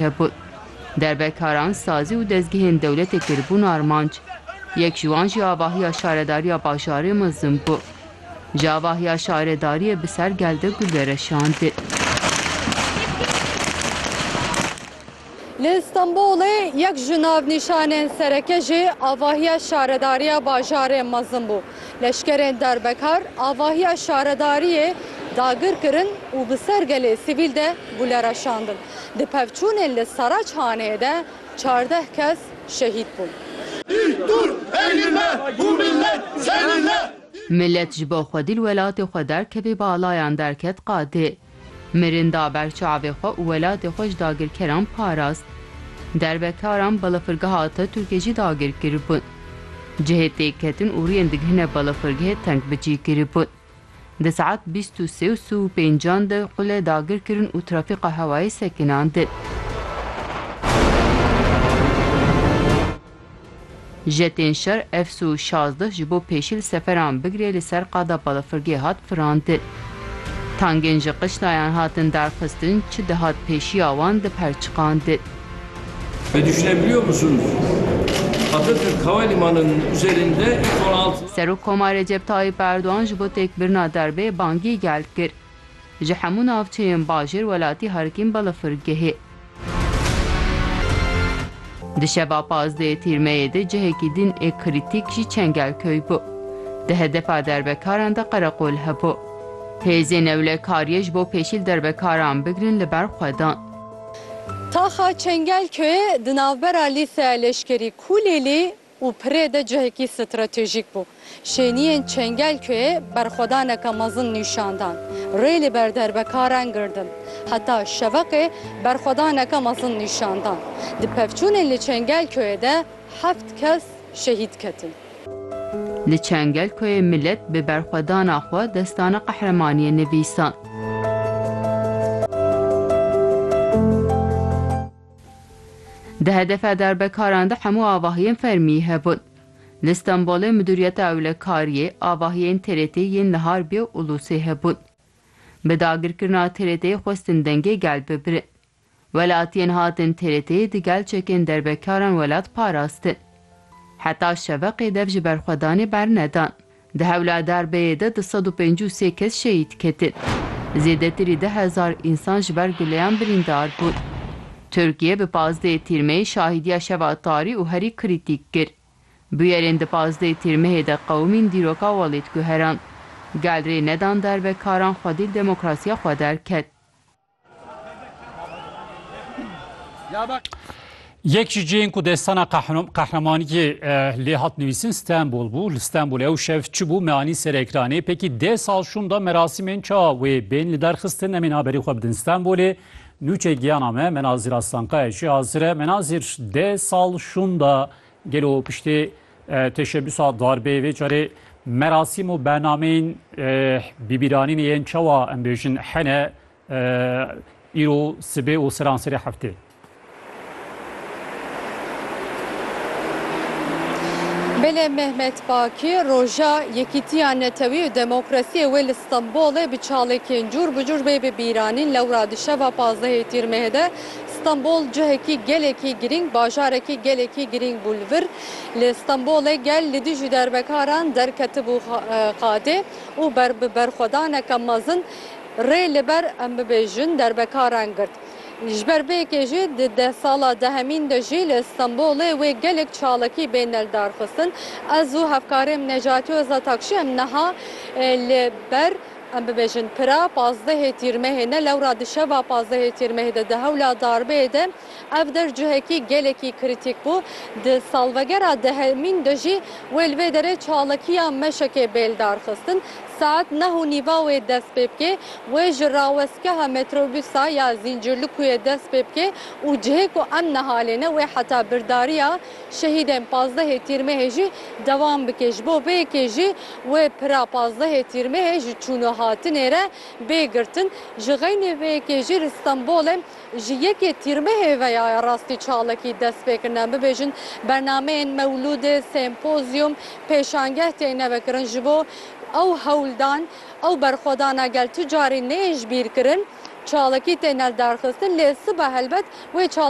Hepû derbekaran sazî û dezgehên dewletê kiribûn armanc. Yek ji wan jî avahiya şaredariya bajarê Mizim bû. Ji avahiya şaredariyê bi ser gel de gul vereşandin. Li Stenbolê yek ji navnîşanên sereke jî avahiya şaredariya bajarê Mizim bû. Leşkerên derbekar avahiya şaredariyê dagir kirin û bi ser gelê sivîl de gule reşandin. di pevçûnên li Saraçhanê de çardeh kes şehîd bûn. Milet ji bo xwedî li welatê xwe derkevê balayan derket qadê. Mirin da ber çavê xwe û welatê xwe ji dagirkeran parast. Derbekaran balafirgeha Atatürkê jî dagir kiribûn. Cihê têkketin û riyên digihine balafirgehê teng bicî kiribûn. Di saet bîst û sê û si û pêncan de qule dagir kirin û trafîka hewayê sekinandin. Jetên şer Fsu şazdeh ji bo pêşî li seferan bigire li ser qada balafirgê hat firandin. Tangên ji qişlayan hatin darxistin, çi dihat pêşiya wan diperçiqandin. Serokkomar Recep Tayyîp Erdogan ji bo têkbirina derbê bangî gel kir. Ji hemû navçeyên bajêr welatî herikîn belafirgehê. Di şeva pazdeyê tîrmeyê de cihekî din ê krîtîk jî Çengelköy bû. Di hedefa derbekaran de qereqol hebû. Hêzên ewlekariyê ji bo pêşîl derbekaran bigirin li ber xwe dan. Taxa Çengelköyê di navbera Lîseya Leşkerî Kûlêlî û Pirê de cihekî stratejîk bû. Şêniyên Çengelköyê berxwedaneke mezin nîşan dan. Rê li ber derbekaran girtin. Heta şeveqê berxwedaneke mezin nîşan dan. Di pevçûnên li Çengelköyê de heft kes şehîd ketin. Li Çengelköyê milet bi berxwedana xwe destana qehremaniyê nivîsand. Di hedefa darbekaran de hemû avahiyên fermî hebûn. Li Stenbolê Midûriyeta Ewlekariyê avahiyên TRT'ê yên li Harbiyê û Ulusê hebûn. Bi dagirkirina TRT'ê xwestin dengê gel bibirin. Welatiyên hatin TRT'ê di gel çekên derbekaran welat parastin. Heta şeveqê dev ji berxwedanê bernedan. Di hewla derbeyê de du sed û pêncî û sê kes şehîd ketin. Zêdetirî deh hezar însan ji ber guleyan birîndar bûn. Tirkiye bi pazdeh Tîrmeyê şahîdiya şeva tarî û herî krîtîk kir. Bûyerên di pazdeh Tîrmehê de qewimîn dîroka welêt guherand. Gel rê nedan derbekaran xwedî li demokrasiya xwe derket. Yek ji cihên ku destana qehremaniyê lê hat nivîsin Stenbol bû. Li Stenbolê ew şev çi bû me anî ser ekranê. Pekî deh sal şûn da merasîmên ça wê bên li der xistin. Em ên haberî xwe bidin Stenbolê. Nûçe giyana me Menazîr Aslankaya jî hazir e. Menazîr deh sal şûn da gelo piştê Teşebbüsa darbê vê carê merasîm û bernameyên bîbîranînê yên çawa em bêjin hene îro sibê û seranserê heftê. Belê Mehmet Baki roja Yekîtiya Netewî û Demokrasiyê wê li Stenbolê bi çalekên cûr bi cûr bê bibîranîn lewra di şeva pazdehê tîrmehê de Stenbol cihekî gelekî girîng, bajarekî gelekî girîng bû li vir. Li Stenbolê gel li dijî derbekaran derketibû qadê û bi berxwedaneke mezin rê li ber em bibêjin derbekaran girt. Ji ber vê yekê jî di deh sala dehemîn de jî li Stenbolê wê gelek çalakî bên neldarxistin. Ez û hevkarê min Necati Ozatakşi em niha li ber em bibêjin pira pazdehê Tîrmehê ne lewra di şeva pazdehê Tîrmehê de di hewla darbeyê de, Ev der cihekî gelekî krîtîk bû. Di salvegera dehemîn de jî wê li vê derê çalakiya meşekê bêldar xistin. Saet neh û nîva wê dest pê bikê. Wê ji rawestgeha metrobûsa ya Zîncirlikuyê dest pê bikê û cihê ku em niha lê ne wê heta birdariya şehîdên pazdehê Tîrmehê jî dewam bikê. Ji bo vê yekê jî wê pira pazdehê Tîrmehê ji çûn û hatinê re bê girtin. Ji xeynê vê yekê jî li Stenbolê. Ji yekê Tîrmehê ve ya rastî çalakî dest pê kirine. Bibêjin bernameyên mewlûdê, sempozyum, pêşangeh têne vekirin ji bo ew hewldan, ew berxwedana gel tu carî neyên ji bîr kirin. Çalakî têne lidarxistin lê sibe helbet wê çalakî.